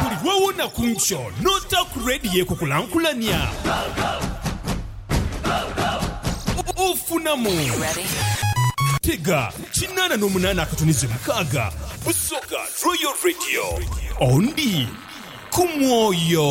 Buli lwe wona ku nkyo n'otaaku leediyo ekukulankulania, ofunamu. Tega kinaana n'omunaana akatuniza omukaaga, Busoga Royal Radio. Ondi ku mwoyo.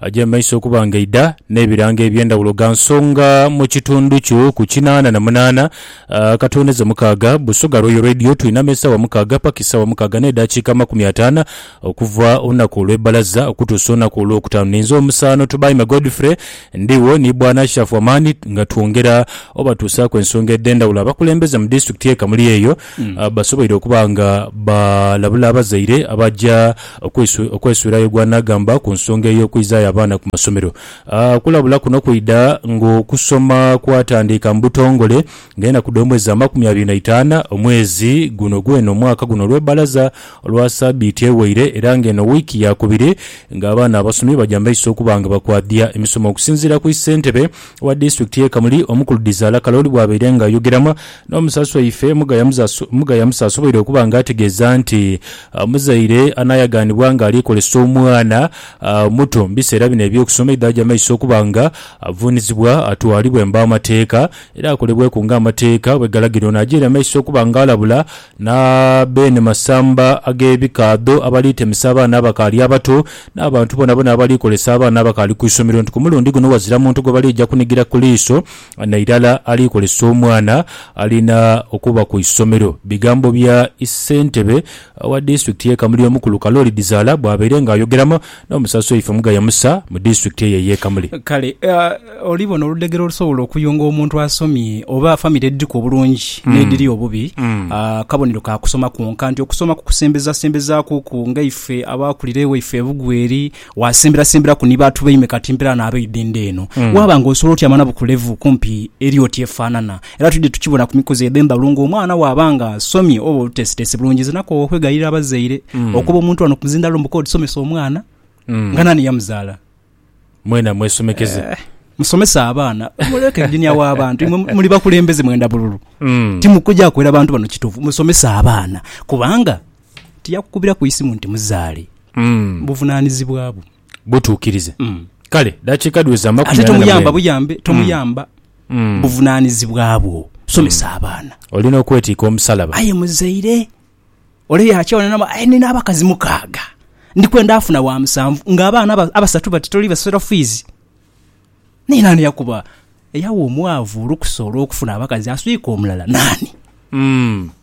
Aja maiso okuba nga aidha n'ebirango eby'endhawulo gha nsonga mu kitundu kyo ku kinaana na munaana akatondeza mukaaga. Busoga Royal Radio twinama esaawa mukaaga paka esaawa mukaaga n'edaakiika amakumi ataana okuva olunaku olw'ebbalaza okutuusa olunaku olwokutaanu. Ninze omusaano Tubaime Godfrey ndigho ni Bwana Ashafu Amani nga twongera obatuusaaku ensonga edh'endhawulo. Abakulembeze mu disitulikiti y'e Kamuli eyo basoboire okuba nga balabula abazaire abaja okwesuirayo gwanaagamba ku nsonga ey'okwizaayo abaana ku masomero. Okulabula kuno kwidha ng'okusoma kwatandiika mu butongole nga enaku dh'omwezi amakumi abiri na itaana omwezi guno gwene omwaka guno olw'ebbalaza olwa sabiiti eweire era nga eno wiiki yaakubiri ng'abaana abasomi baja mu maiso okuba nga bakwadhia emisomo. Okusinziira ku Ssentebe Owa disitulikiti y'e Kamuli, Omukulu Dizaala Kalooli bwabaire nga ayogeramu n'omusaasi waife, Mugaya Mugaya Musa asoboire okuba nga ategeeza nti omuzaire anaayaganibwa nga ali kozesa omwana omuto mu biseera bino eby'okusoma aidha aja maiso okuba nga avuunizibwa atwalibwe mu b'amateeka era akolebweku nga amateeka bwegalagira. Ono ajaire maiso okuba nga alabula Na beene masamba ag'ebikaadho abali temesa abaana abakaali abato, n'abantu boonaboona abali kolesa abaana abakaali ku isomero nti ku mulundi guno ghazira muntu gwe baliija kunigira ku liiso na irala ali kolesa omwana alina okuba ku isomero. Bigambo bya issentebe wa disitulikiti y'e Kamuli omukulu Kalooli Bizaala bwabaire nga ayogeramu. N'omusaso ife mugaya Musa mu disitulikiti eyo ey'e Kamuli. Kale oli bona oludhegere olusobola okuyunga omuntu asomye oba famire edhiriku obulungi n'edhiri obubi. Akabonero ka kusoma kwonka nti okusoma kukusembezasembezaakuku. Ngaife abaakulira ewaifo e Bugweri, waasemberasemberaku ni baatu baime kati mpeera n'abaidha endha eno. Waaba ng'osobola otyama nabo ku levu kumpi eri oti efaanana, Era twidhie tukibona ku mikuzi edho embalu nga omwana waaba nga asomye oba oluteesiteesi bulungi. Nze nakoowa okwegayirira abazaire mm. okuba omuntu wano ku muzindaalo mbu kodi somesa omwana mm. nga nani yamuzaala mwena mwesomekeze eh. musomesa abaana muleke enginia w'abantu muli bakulembeze mwenda bululu mm. timukuja kwera bantu bano kituufu musomesa abaana kubanga tiyakukubira ku isimu nti muzaale mm. buvunanizibwa bwo butuukirize. Kale, dakiika dhiweze amakumi ana na mwenda. Ate tomuyamba buyambe, tomuyamba buvunaanizibwa bwo. Somesa abaana. Olina okwetiika omusalaba. Aye muzaire, ole yaakyawa n'adhama, Aye nina abakazi mukaaga, ndi kwenda afuna wa musanvu, ng'abaana abasatu bati toli basasula fiizi? Naye naani eyakuba, eyagha omwavu olukusa olw'okufuna abakazi aswike omulala? Naani?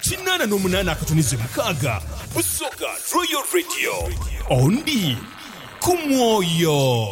Kinaana n'omunaana akatunize mukaaga busoga Royal Radio ondi ku mwoyo.